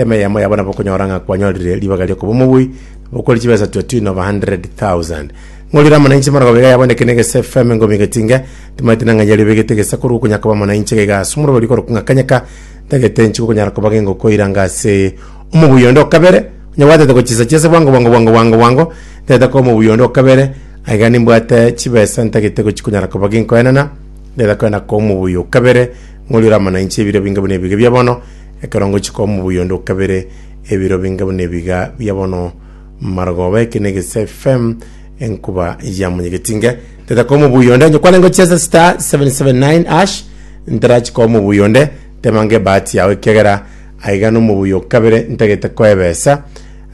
Emeyemo yabo nabokonyora ng'a kwanyorire ribaga riokoba omobui, nabokori chibesa twatwin of a hundred thousand. Ng'orire amanaiche marago baiga yaboneke na egesa efm engomi egati inga, timaete na ng'ai yario begete egesa korwa okonya koba amanaiche iga iga ase omoroberi okorokwa ng'a Kanyeka, ntagete inche gokonyara koba gengoko ira anga ase omobui onde o kabere, onyabwatete gochisa chiase bwango bwango bwango bwango bwango, ntagete koba omobui onde o kabere, aiga nimbwate chibesa ntagete gochikonyara koba genkoenana, ntagete koenda koba omobui o kabere, ng'orire amanaiche ebiro binga buna ebiga bia bono, Ekero ngochika omobuya onde o kabere, ebiro binge buna ebiga bia bono, marogoba eke negese FM, enkuba ya monyegeti nge, teta kwa omobuya onde, nyokwane ngochesa star 779 ash, ntarachika omobuya onde, tema nge ebahati yao ekiagera aiga na omobuya o kabere ntagete koebesa,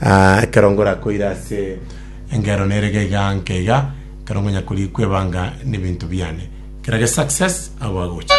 ah, ekero ngorakoire ase engero nere iga iga nke iga, ekero ngonya korikwa ebanga na ebinto biane, kera ge success, abwo agocha.